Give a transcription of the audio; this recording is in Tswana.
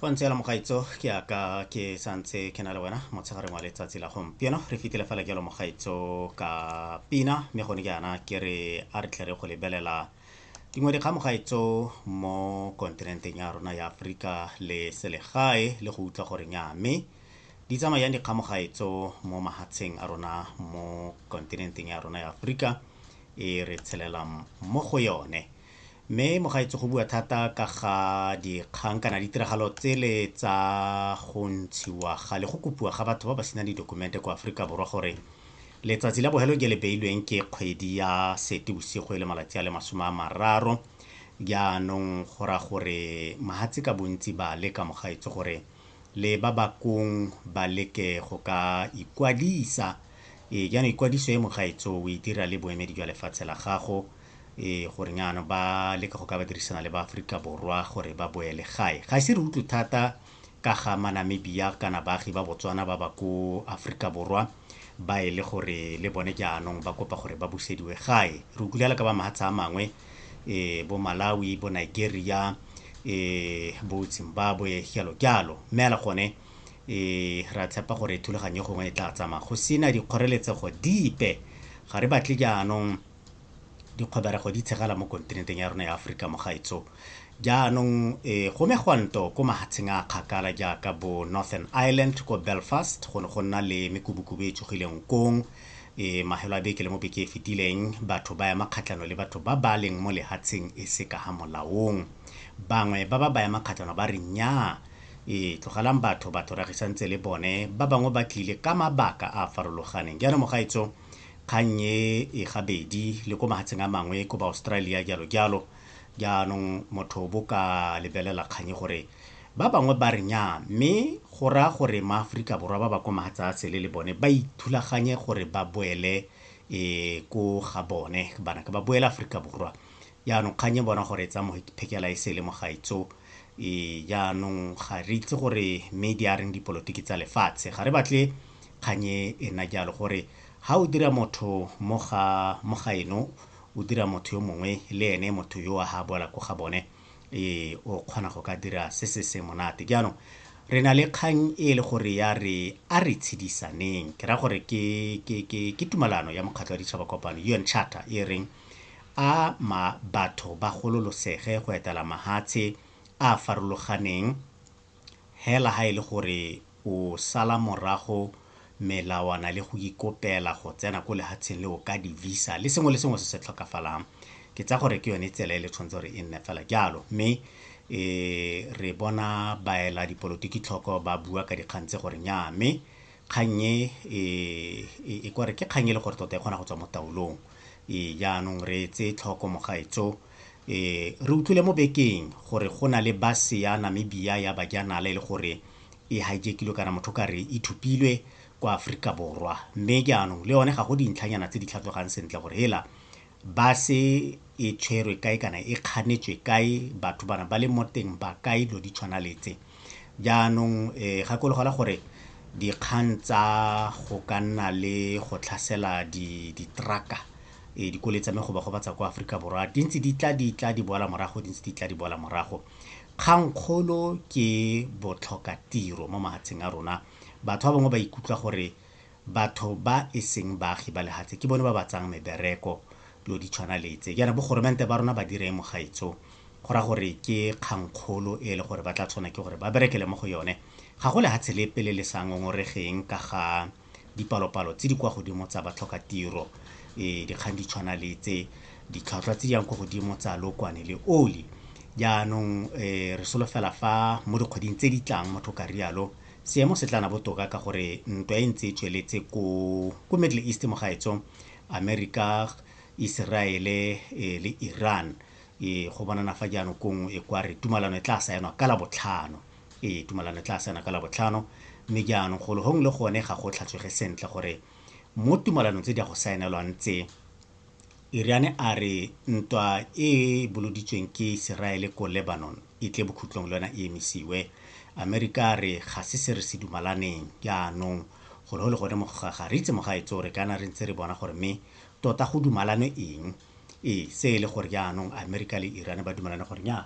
fa ntse la mogaitso ke aka ke santse ke na le wena motshegareng wa letsatsi la gompieno re fitile fela jalo mogaitso ka pina mme gone ke yana ke re a re tle re go lebelela dingwe dikgang mogaitso mo kontinenteng ya rona ya aforika le selegae le go utlwa gore nya mme di tsamayang dikgang mogaitso mo mahatsheng a rona mo kontinenteng ya rona ya aforika e re tshelelang mo go yone Mme mogaetsho go bua thata ka ga dikgang kana ditiragalo tsele tsa go ntshiwa ga le go kopiwa ga batho ba ba sena didokumente kwa Aforika Borwa gore letsatsi la bohelo ke le beilweng ke kgwedi ya sete bosigo e le malatsi a le masome a mararo jaanong go ra gore mahatse ka bontsi ba leka mogaetso gore le ba bakong ba leke go ka ikwadisa ee jaanong ikwadiso e mogaetso o e dira le boemedi jwa lefatshe la gago e gore nyano ba leka go ka ba dirisana le ba Afrika Borwa gore ba boele gae ga se re utlwe thata ka ga manamibia kana baagi ba botswana ba ba ko Afrika Borwa ba e le gore le bone jaanong ba kopa gore ba busediwe gae re utlwile ka ba mahatsha a mangwe e bo Malawi bo Nigeria e bo Zimbabwe jalo jalo mme ala gone e ra tshepa gore thulaganyo gongwe e tla tsamaya go sena dikgoreletsego dipe ga re batle jaanong dikgoberego di tshegela mo kontinenteng ya rona ya Aforika mo gaetsho. Jaanong e, go megwanto ko mahatsheng a kgakala jaaka bo Northern Ireland ko Belfast go ne go nna le mekubukubu e tsogileng kong e mahelo a beke le mo beke e fetileng batho ba ema kgatlhano le batho ba ba leng mo lehatsheng e se ka ga molaong bangwe ba ba ba ema kgatlhano ba re nnyaa e tlogelang batho batho ra gisantse le bone ba bangwe ba tlile ka mabaka a a farologaneng jaanong mogaetso Kgang e e gabedi le ko mahatsheng a mangwe ko ba Australia jalo jalo. Jaanong motho bo ka lebelela kgang e gore ba bangwe ba re nyaa mme go raya gore maAforika Borwa ba ba ko mahatsa a sele le bone ba ithulaganye gore ba boele um ko ga bone kana ba boele Aforika Borwa. Jaanong kgang e bona gore e tsaya phekela e sele mogaetsho. Jaanong ga re itse gore mme di a reng dipolotiki tsa lefatshe. Ga re batle kgang e e nna jalo gore ga o dira motho mo ga eno, o dira motho yo mongwe le ene motho yo a ga boela ko ga bone o kgona go ka dira se se se monate. Jaanong re na le kgang e le gore ya re a re tshedisaneng. Ke raya gore ke tumalano ya Mokgatlho wa Ditšhaba Kopano, UN Charter, e reng. a ma batho ba gololosege go etela mahatshe a a farologaneng hela ha e le gore o sala morago melawana le go ikopela go tsena ko lehatsheng le o ka di-visa le sengwe le sengwe se se tlhokafalang ke tsa gore ke yone tsela e le tshwanetse gore e nne fela jalo mme e re bona baela dipolotiki tlhoko ba bua ka dikgang tse gore nya mme Kgang e, e, e, e kware ke kgang e le gore tota e kgona go tswa mo taolong. E, jaanong re tse tlhoko mogaetso. E, re utlwile mo bekeng gore go na le base ya Namibia ya bajanala e le gore e hijekilwe kana motho ka re e thupilwe kwa Aforika Borwa. Mme jaanong le yone ga go dintlhanyana tse di tlhatlhogang sentle gore hela base e tshwerwe kae kana e kganetswe kae, batho bana ba le mo teng ba kae, dilo di tshwana le tse. Jaanong gakologelwa gore dikgang tsa go ka nna le go tlhasela di-truck-a dikoloi tsa me go ba gobatsa kwa Aforika Borwa, di ntse di tla, di tla, di boela morago, di ntse di tla, di boela morago. Kgang kgolo ke botlhokatiro mo mafatsheng a rona. Batho ba bangwe ba ikutlwa gore batho ba e seng baagi ba lehatshe ke bone ba ba tsang mebereko dilo di tshwana le tse jaana bogoromente ba rona ba dire mo gaetso go ra gore ke kgangkgolo e le gore ba tla tshwana ke gore ba berekele mo go yone ga go lehatshe le pele le sa ngongoregeng ka ga dipalopalo tse di kwa godimo tsa batlhoka tiro e dikgang di tshwana le tse ditlhwatlhwa tse di yang ko godimo tsa lokwane le oli jaanong um re solofela fa mo dikgweding tse di tlang motho ka rialo Seemo se tla na botoka ka gore ntwa e ntse e tsweletse ko ko Middle East mo gaetso America, Iseraele eh, le Iran eh, go bonana fa jaanong kong e kwa re tumalano e tla saenwa ka labotlhano ee tumalano e tla saenwa ka labotlhano mme jaanong golo gongwe le gone ga go tlhatswege sentle gore mo tumalanong tse di ya go saenelwang tse Iriane a re ntwa e e boloditsweng ke Iseraele ko Lebanon e tle bokhutlong le yona e emisiwe. Amerika a re ga se se re se dumalaneng jaanong gore go le gone moga ga re itse mogaetsoo re kana re ntse re bona gore mme tota go dumalanwe eng. Ee, se e le gore jaanong Amerika le Iriane ba dumalane gore nnyaa